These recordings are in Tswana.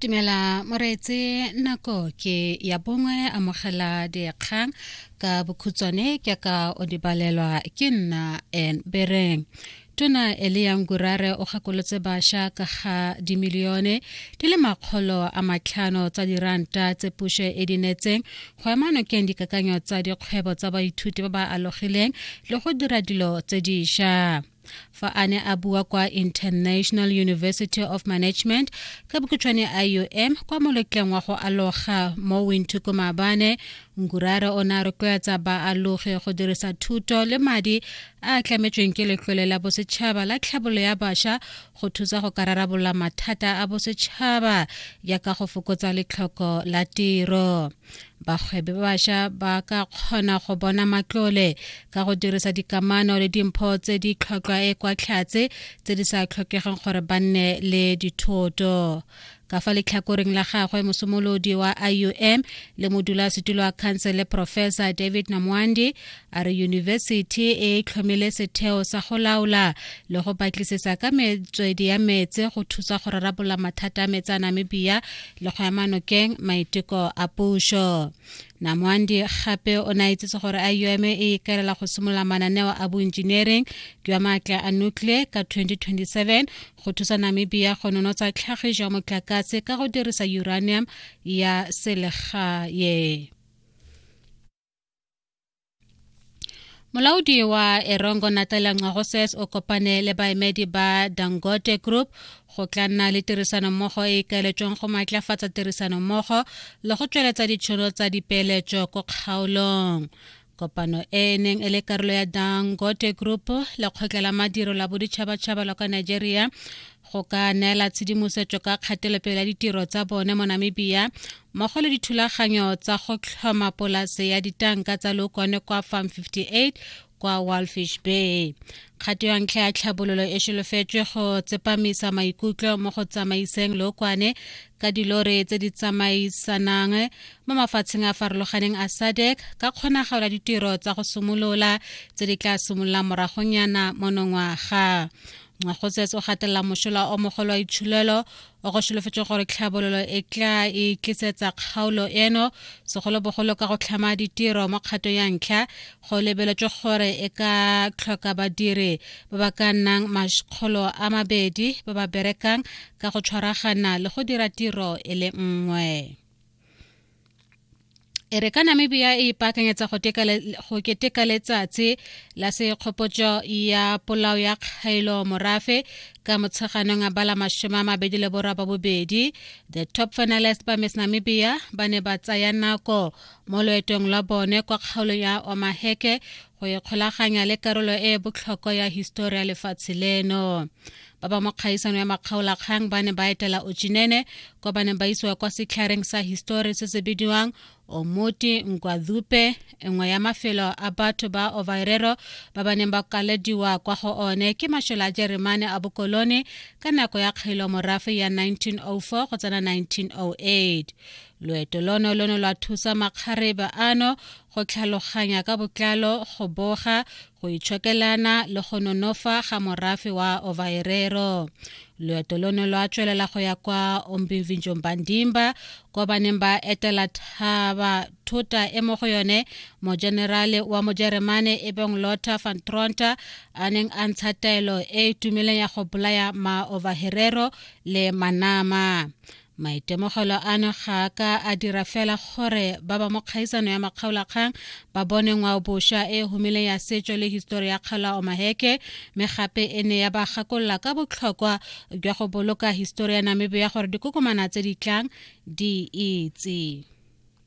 Tumela moreetse nako ke ya bongwe amogela dikgang ka bokhutswane ke ka o di balelwa ke nna en bereng tona eliang gurare o gakolotse basha ka ga dimilione di le makgolo a matlhano tsa diranta tse puso e di netseng go ema nokeng dikakanyo tsa dikgwebo tsa baithuti ba ba alogileng le go dira dilo tse diša fa a ne a bua kwa international university of management ka bokutshwane iom kwa moletleng wa go aloga mo winthuko maabane nkurare o ne a rotloetsa baalogi go dirisa thuto le madi a a tlametsweng ke letlole la bosetšhaba la tlhabolo ya basha go thusa go ka rarabolola mathata a bosetšhaba jaaka go fokotsa letlhoko la tiro bagwebi ba bašwa ba ka kgona go bona matlole ka go dirisa dikamano le dimpho tse di tlhotlhwa e kwa tlhatse tse di sa tlhokegeng gore ba nne le dithoto ka fa letlhakoreng la gagwe mosomolodi wa iom le modulasetulo wa khansele professor david namwandi a re yunibesithi e tlhomile setheo sa go laola le go batlisisa ka metswedi ya metse go thusa go rarabolola mathata a metsa namibia le go ema nokeng maiteko a puso namoandi gape o ne a itsetse gore iom e ikaelela go simolola mananeo a boengineering jwa maatla a nuclear ka 2027 go thusa namibia go nonotsa tlhagiso ya motlakase ka go dirisa uranium ya selegae molaodi wa erongo natela ngwagoses o kopane le baemedi ba dangote group go tla nna le tirisanommogo e ikaeletsweng go maatlafatsa tirisanommogo le go tsweletsa ditšhono tsa dipeeletso ko kgaolong kopano e e neng e le karolo ya dangote group lekgotla la madiro la boditšhabatšhaba la kwa nigeria go ka neela tshedimosetso ka kgatelopele ya ditiro tsa bone mo namibia mmogo le dithulaganyo tsa go tlhoma polase ya ditanka tsa lokone kwa farm 58 kwa walfish bay kgato ya ntlha ya tlhabololo e solofetswe go tsepamisa maikutlo mo go tsamaiseng lookwane ka dilore tse di tsamaisanang mo mafatsheng a farologaneng a sadek ka kgonagalo ya ditiro tsa go simolola tse di tla simololang moragonyana monongwaga go tsetse o gatelela mošola o mogolo wa itshulelo o go solofetse gore tlhabololo e tla e tlisetsa kgaolo eno segolobogolo ka go tlhama ditiro mo kgatong ya ntlha go lebeletswe gore e ka tlhoka badiri ba ba ka nnang makgolo a mabedi ba ba berekang ka go tshwaragana le go dira tiro e le nngwe e re ka namibia e ipaakanyetsa go keteka letsatsi la sekgopotso ya polao ya kgaelo morafe ka motsheganong a bala masome a mabedi le borwa ba bobedi the top finalist ba miss namibia ba ne ba tsaya nako mo loetong lwa bone kwa kgaolong ya omaheke go ikgolaganya le karolo e e botlhokwa ya histori ya lefatshe leno ba ba mo kgaisano ya makgaolakgang ba ne ba etela ochinene kwa ba neng ba isiwa kwa setlhareng sa histori se se bidiwang omoti nkwadhupe nngwe ya mafelo a batho ba ovairero ba ba neng ba kalediwa kwa go one ke mashole a jeremane a bokolone ka nako ya kgailo morafe ya 1904 go tsena 1908 loeto lono lo ne lwa thusa makgarebe ano go tlhaloganya ka botlalo go boga go itshokelana le go nonofa ga morafe wa ovaerero loeto lono lwa tswelela go ya kwa ombimvinjong bandimba ko ba neng ba etela thaba thota e mo go yone mojenerale wa mojeremane e beng lotta van tronta a neng a ntsha taelo e e tumileng ya go bolaya maovaherero le manama maitemogelo ano ga a ka a dira fela gore ba ba mo kgaisano ya makgaolakgang ba bone ngwao bosha e humileng ya setso le histori ya kgaola omaheke mme gape e ne ya ba gakolola ka botlhokwa jwa go boloka histori ya namibia gore dikokomana tse di tlang di itse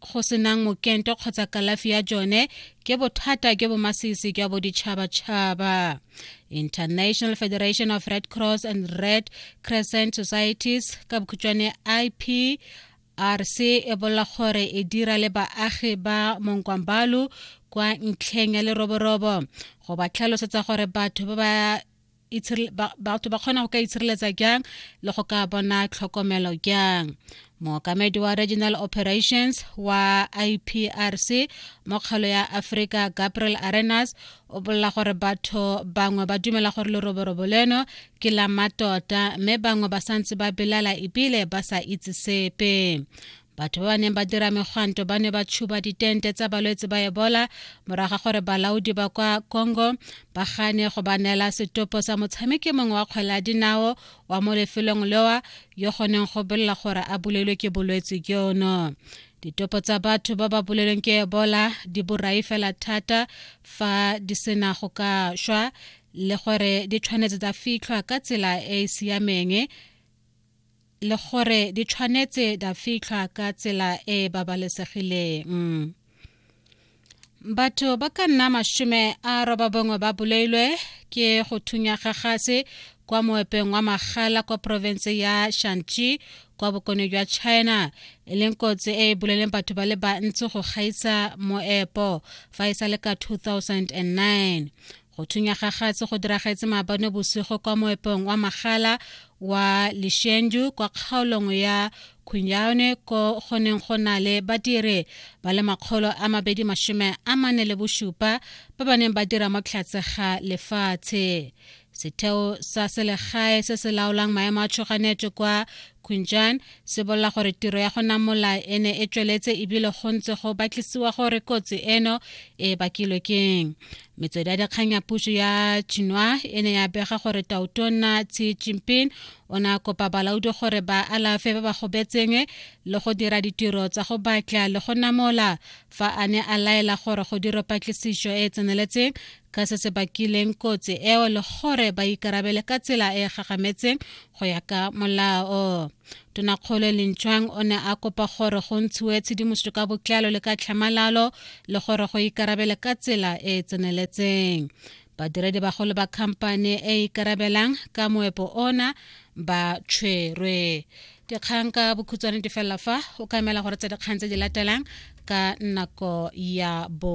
go senang mokento kgotsa kalafi ya jone ke bothata jo bo masisi jwa boditšhabatšhaba international federation of red cross and red crescent societies ka bokhutšwane ip rc e bolela gore e dira le baagi ba monkwambalu kwa ntlheng ya leroborobo go ba tlhalosetsa gore batho ba ba batho ba kgona go ka itshireletsa jang le go ka bona tlhokomelo jang mookamedi wa regional operations wa iprc mo kgalo ya africa gabriel arenas o bolela gore batho bangwe ba dumela gore leroborobo leno ke la matota mme bangwe ba santse ba belala ebile ba sa itse sepe batho ba ba neng ba dira megwanto ba ne ba tshuba ditente tsa balwetse ba ebola morago ga gore balaodi ba kwa congo ba gane go ba neela setopo sa motshameki mongwe wa kgwele ya dinao wa mo lefelong lewa yo goneng go bolela gore a bolelwe ke bolwetse jono ditopo tsa batho ba ba bolelweng ke ebola di borai fela thata fa di sena go ka šwa le gore di tshwanetse tsa fitlhwa ka tsela e e siameng le gore di tshwanetse da fitlhwa ka tsela e e babalesegileng batho ba ka nna mashome a roba bongwe ba bolailwe ke go thunya ga gase kwa moepeng wa magala kwa porofense ya shanxi kwa bokone jwa china e leng kotsi e e boleleng batho ba le bantsi go gaisa moepo fa e sa le ka 2009 Go thunya ga gatse go diragetse maabane bosigo kwa moepong wa magala wa Lishendu kwa kgaolong ya Khunyaone ko go neng go na le badiri ba le makgolo a mabedi mashome a mane le bosupa ba ba neng ba dira mo tlhatse ga lefatshe setheo sa selegae se se laolang maemo a tshoganetso kwa kunjan se bolela gore tiro ya go namola e ne e tsweletse ebile go ntse go batlisiwa gore kotsi eno e bakilwe keng metswedi ya dikgang ya puso ya chinwa e ne ya bega gore tautonna xi jinping o ne a kopa balaodi gore ba alafe ba ba gobetseng le go dira ditiro tsa go batla le go namola fa a ne a laela gore go dira patlisiso e e tseneletseng ka se se bakileng kotsi eo le gore ba ikarabele ka tsela e e gagametseng go ya ka molao tonakgolo e lentšwang o ne a kopa gore go ntshiwe tshedimosetso ka botlalo le ka tlhamalalo le gore go ikarabele ka tsela e e tseneletseng badiredi bagolo ba khamphane e e ikarabelang ka moepo ona ba tshwerwe dikgang ka bokhutswane di felela fa o ka emela gore tse dikgang tse di latelang ka nako ya bo